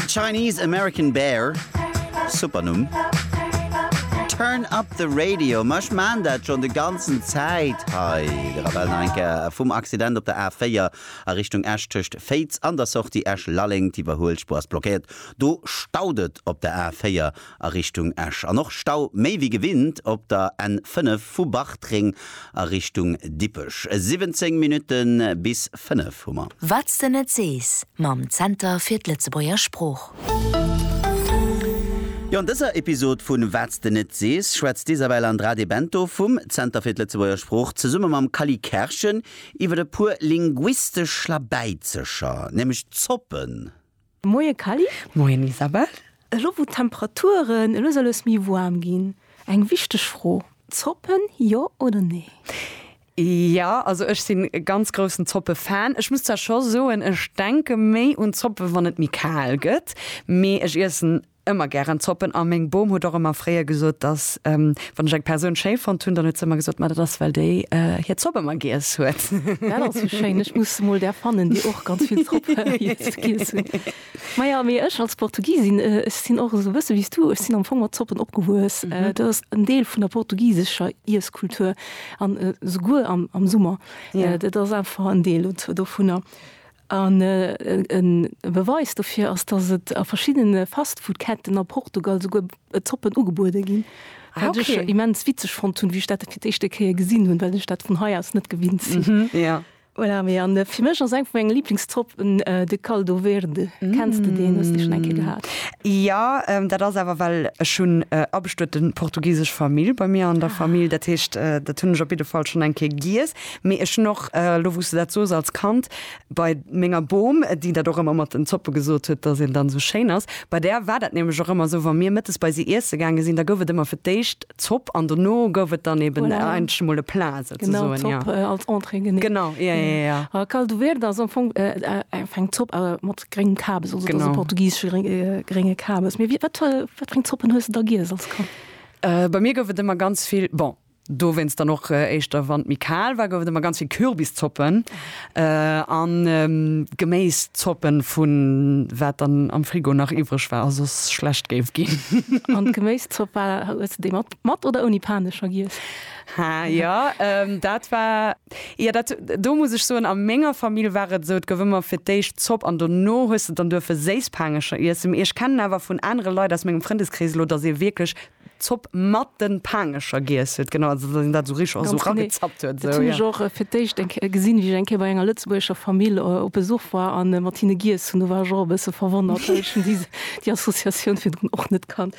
Chinese American Bear, super Numm. Turn up the radio, ma ech maan dat schonn de ganzen Zäit hei. De Rebell nach eng Kéier vum Accident op der A4 a Richtung Esch tëscht Féiz an der Sortie Esch-Lalleng. D'Iwwerhuelspuer ass blockéiert, do staut et op der A4. a Richtung Esch an och Stau méi wéi gewinnt op der N 5 vu Bartreng a Richtung Dippech. 17 Minutte bis 5 hu mer. Wat s de net sees mam Zenter fir d'Lëtzebuerger Sprooch. Jo, an dëser Episod vu Wat s de net sees schwätzt d'Isabel Andrade de Bento vum Zenter fir d'Lëtzebuerger Sprooch zesumme mam Cally Kerschen iwwer e puer linguistesch Schlabäizecher, nämlech d'Zoppen. Moie Kally. Moien Isabelle. Elo wou d'Temperaturen elo soll es méi woarm ginn, eng wichteg Fro, Zoppen jo oder nee? Jo, also ech sinn e ganz groussen Zoppe-Fan. Ech muss zwar scho soen, ech denke méi un Zoppe wann et méi kal gëtt, mee ech iessen Ëmmer gären Zoppen. A meng Bom huet och ëmmer fréier gesot, dass, wann ech eng Persoun schéi fonnt hunn, dann huet se ëmmer gesot, Ma dat ass, well déi hir Zopp ëmmer giess huet. Dat ass jo schéin. Ech muss emol där fannen, déi och ganz vill Zopp giess hunn. Maja, mee ech als Portugisin, ech sinn och esou e bësse wéi s du. Ech sinn am Fong mat Zoppen opgewuess. Dat ass en Deel vun der portugisescher Iesskultur, an esouguer am Summer. Dat ass einfach en Deel dovunner. An e Beweis dofir ass, datt et a verschiddene Fastfood-Ketten a Portugal souguer Zoppen ugebuede ginn, wat ech immens witzeg fonnt hunn, wéi ech dat fir d'éischte Kéier gesinn hunn, well ech dat vun hei aus net gewinnt sinn. Voilà, mee an fir mech ass eng vu menge Liiblingszoppen de Caldo Verde. Kenns de deen? Hues dee schonn eng Kéier gehat? Jo, dat ass awer well ech hunn abestueten portugisesch Famill bei mir an der Famill, dat heescht dat hunn ech op jidde Fall schonn eng Kéier giess. Mee ech hunn och, elo wou s de dat sos, als Kand bei menger Bom, déi dat och ëmmer mat den Zoppe gesot huet, dass een dann esou schéin ass, bei där war dat nämlech och ëmmer esou, wa mir mëttes bei si iesse gaange sinn, da gouf et ëmmer fir d'éischt Zopp an dono gouf et dann eeben eigentlech emol e Plat souzesoen. Genau, Zopp als Entrée, genee. Genau, ja, ja, ja. A caldo verde ass am Fong eng Zopp mat gréngem Kabes, also et ass e portugisesche grénge Kabes. Mee wat fir eng Zoppen hues de da giess als Kand? Bei mir gouf et ëmmer ganz vill, bon, Dowéinst dann och éischter, wann et méi kal war, gouf et ëmmer ganz vill Kürbiszoppen a Geméiszoppen, vu wat dann am Frigo nach iwwreg war a soss schlecht géif ginn. An d'Geméiszopp war, hues de déi mat oder ouni Panecher giess? Ha, jo, dat war, jo, dat, do muss ech soen, a menger Famill war et esou, et gouf ëmmer fir d'éischt Zopp an dono hues de dann duerfe Séisspanecher iessen. Mee ech kennen awer vun anere Leit aus mengem Frëndeskrees elo, datt ee wierklech Zopp mat den Paangecher giess huet, genau, also dass een dat esou richteg esou ragezappt huet. Dat hunn ech och fir d'éischt eng Kéier gesinn, wéi ech eng Kéier bei enger lëtzebuergescher Famill op Besuch war an mat hinne giess hunn. Do war ech och e bësse verwonnert, well ech hunn déi Associatioun virdrun och net kannt.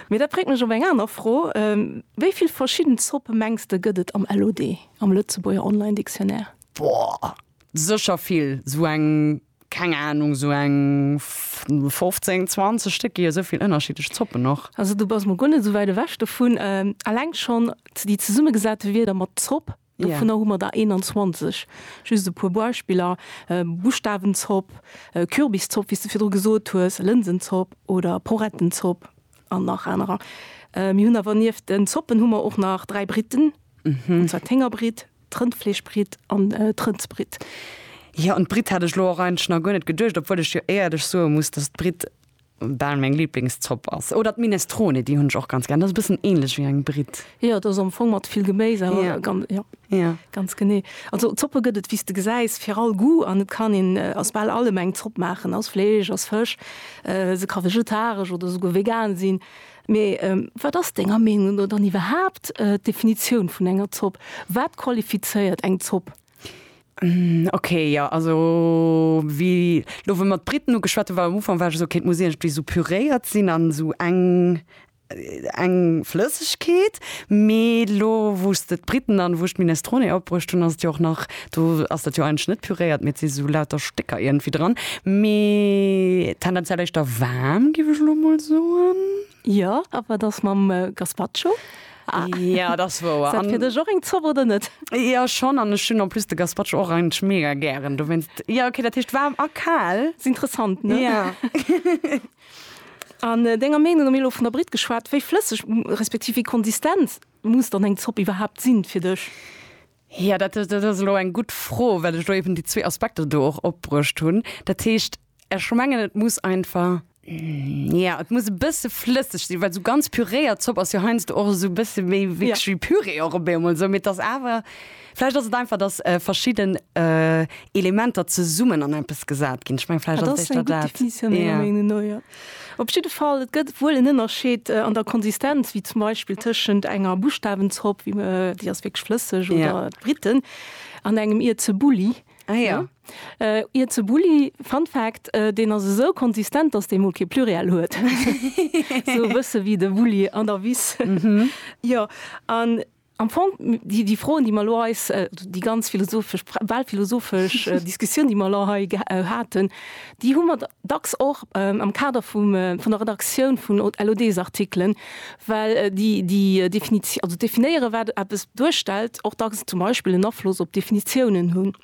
Mee dat bréngt mech op eng aner Fro, Wéi vill verschidden Zoppe mengs de gëtt et am LOD, am Lëtzebuerger Online Dictionnaire? Boah! Sécher vill, sou eng, keng Ahnung, sou eng 15, 20 Stéck, gi jo sou vill ënnerschiddlech Zoppen och. Also du bass mol guer net sou wäit ewech dovun. Alleng schonn déi zesummegesate Wierder mat Zopp, dovunner hu mer der 21. Just e puer Beispiller, Buschtawenzopp, Kürbiszopp, wéi s de virdru gesot hues, Lënsenzopp oder Porettenzopp an nach anerer. Mir hunn awer nieft den Zoppen hu mer och nach dräi Britten, an zwar d'Héngerbritt, D'Rëndfleeschbritt an d'Rëndsbritt. Jo, un d'Britt hat ech elo och eigentlech nach guer net geduecht, obwuel ech jo éierlech soe muss, dass d'Britt bal meng Liblingszopp ass. Oder d'Minestrone, déi hunn ech och ganz gär. Dat ass e bëssen ähnlech wéi eng Britt. Jo, dat ass am Fong mat vill Geméis, awer gan, jo, jo, ganz genee. Also Zoppe gëtt et, wéi s de gesäis, fir all Goût an et kann een aus bal allem eng Zopp maachen, aus Fleesch, aus Fësch. Se ka vegetaresch oder souguer vegan sinn. Mee wat ass denger Meenung no dann iwwerhaapt d'Definitioun vun enger Zopp? Wat qualifizéiert eng Zopp? Ok, jo also wéi elo wou mer d'Briten ugeschwat hunn, war am Ufank war ech esou, ok et muss iergendwéi esou püréiert sinn an esou eng eng Flëssegkeet. Mee elo wou s de d'Briten an wou ech d'Minestrone opbruecht hunn, ass et jo och nach, Do ass dat jo eigentlech net püréiert, mee et si sou lauter Stécker iergendwéi dran. Mee tendenziell éischter waarm, géif ech elo mol soen. Jo, a wat ass mam Gazpacho? Jo, dat ass wouer. Ass dat fir dech och eng Zopp oder net? Jo, schonn. An ech hunn en plus de Gazpacho och eigentlech mega gären. Dowéinst, jo, okay, dat heescht waarm a kal. Ass interessant, ne? Jo. An denger Meenung no, mir hu elo vun der Britt geschwat, wéi flësseg respektiv wéi konsistent muss dann eng Zopp iwwerhaapt sinn fir dech? Ja, dat ass elo eng gutt Fro, well ech elo eben déi zwee Aspekter do och opbruecht hunn. Dat heescht, ech mengen, et muss einfach, ja, et muss e bësse flësseg sinn, well esou ganz püréiert Zopp ass jo heiansdo och esou e bësse méi wierklech wéi Püree och op eemol esou. Mee et ass awer, vläicht ass et einfach, dass verschidden Elementer zesummen an eppes gesat ginn. Ech meng, vläicht ass et éischter dat. Op jidde Fall, et gëtt wuel en Ënnerscheed an der Konsistenz, wéi zum Beispill tëschent enger Buschtawenzopp, wéi mer, déi ass wierklech flësseg, oder Ja. d'Briten, an engem Ierzebulli. Ah ja. Ierzebulli, Fun Fact, deen ass esou konsistent, datt dee mol kee Pluriel huet. Esou e bësse wéi de Bulli an der Wiss. Jo, an Am Fong, déi Froen, déi mer elo eis, déi ganz philosophesch, bal philosophesch Diskussioun, déi mer elo hei haten, déi hu mer dacks och am Kader vun der Redaktioun vun LOD-Artikelen, well déi Definitioun, also definéieren, wat eppes duerstellt, och dacks zum Beispill en Afloss op d'Definitiounen hunn.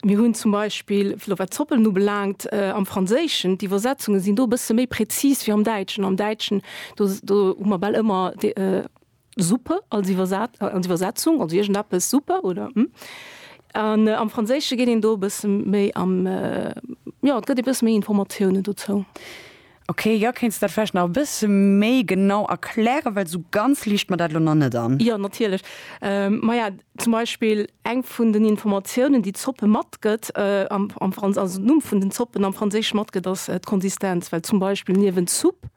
Mir hunn zum Beispill, elo wat Zoppen ubelaangt, am Franséischen, d'Iwwersetzunge sinn do e bësse méi prezis wéi am Däitschen. Am Däitschen, do hu mer bal ëmmer. Suppe als Iwwersetzung, also iergendeppes, Suppe oder hm. An am Franséische geet een do e bësse méi am, jo, et gëtt ee bësse méi Informatiounen dozou. Ok, jo, kéints dat vläicht nach e bësse méi genau erklären, well esou ganz liicht mer dat elo nach net an. Jo, natierlech. Maja, zum Beispill eng vun den Informatiounen, déi d'Zoppe matgëtt, also den Numm vun den Zoppen am Franséische matgëtt, ass d'Konsistenz, well zum Beispill niewent Soupe.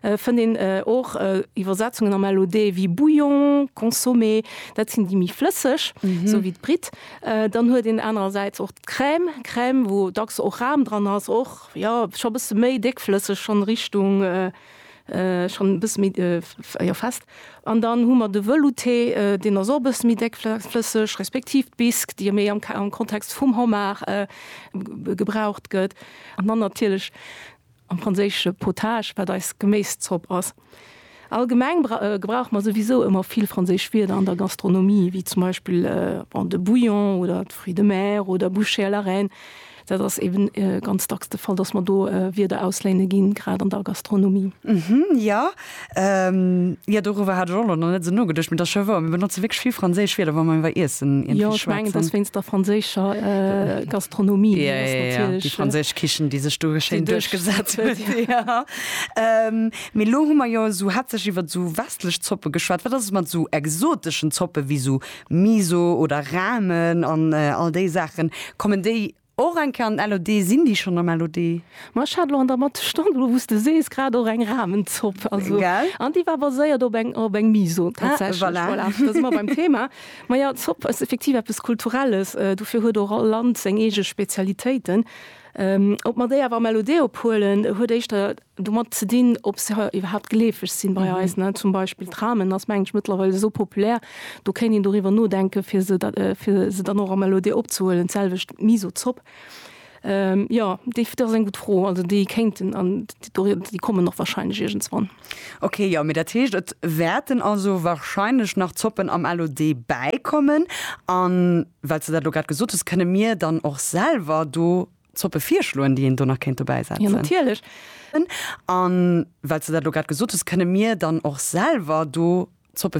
fënnt een och Iwwersetzungen am LOD wéi Bouillon, Consommé, dat sinn déi méi flësseg, esou wéi d'Britt. Dann huet een anerersäits och d'Crème, Crème, wou dacks och Ram dran ass, och jo scho bësse méi déckflësseg, schonn Richtung, schonn e bësse méi, jo fest. An dann hu mer de Velouté, deen ass och e bësse méi déckflësseg, respektiv d'Bisque, déi jo méi am Kontext vum Homard gebraucht gëtt. An dann natierlech am franséische potage, wat eis Geméiszopp ass. Allgemeng gebrauche mer souwisou ëmmer vill franséisch Wierder an der Gastronomie, wéi zum Beispill de bouillon oder de fruits de mer oder bouchée à la reine. Dat ass eeben ganz dacks de Fall, dass mer do Wierder ausléine ginn, grad an der Gastronomie. Jo, Jo, doriwwer hat ech och nach net esou nogeduecht, mee dat ass jo wouer, mir benotze wierklech vill franséisch Wierder, wa mer iwwer Iessen iergendwéi schwätzen. Jo, ech mengen, et ass wéinst der franséischer Gastronomie, déi ass natierlech. Jo, jo, jo, déi franséisch Kichen, déi sech do schéin duerchgesat huet. Jo, mee elo hu mer jo esou haaptsächlech iwwer esou westlech Zoppe geschwat. Wat ass et mat esou exoteschen Zoppe wéi esou Miso oder Ramen an all déi Saachen? Kommen déi Och eng Kéier an den LOD. Sinn déi schonn am LOD? Ma ech hat elo an der Matt Stonn, elo wou s de sees, grad och eng Rahmenzopp. Also, Gell? an déi war baséiert op eng, op eng Miso Ah, tatsächlech. voilà. Voilà, da si mer beim Thema. Ma jo, Zopp ass effektiv eppes Kulturelles. Dofir huet och all Land seng eege Spezialitéiten. Ob mer déi awer am LOD. ophuelen, huet éischter domat ze dinn, ob se iwwerhaapt geleefeg sinn bei eis, ne, zum Beispill Tramen ass meng ech mëttlerweil esou populär, do kéint een doriwwer nodenken fir se da fir se dann och am LOD opzehuelen, d'selwecht d'Miso-Zopp. Jo, déi dat ass eng gutt Fro, also déi kéinten an déi kommen och wahrscheinlech iergendswann. Ok, jo, mee dat heescht et wäerten also wahrscheinlech nach Zoppen am LOD bäikommen, an well s de dat elo grad gesot hues, kënne mir dann och selwer do, Zoppe virschloen, déi een do nach kéint dobäi setzen? Jo, natierlech. An well s du dat elo grad gesot hues, kënne mir dann och selwer do Zoppe.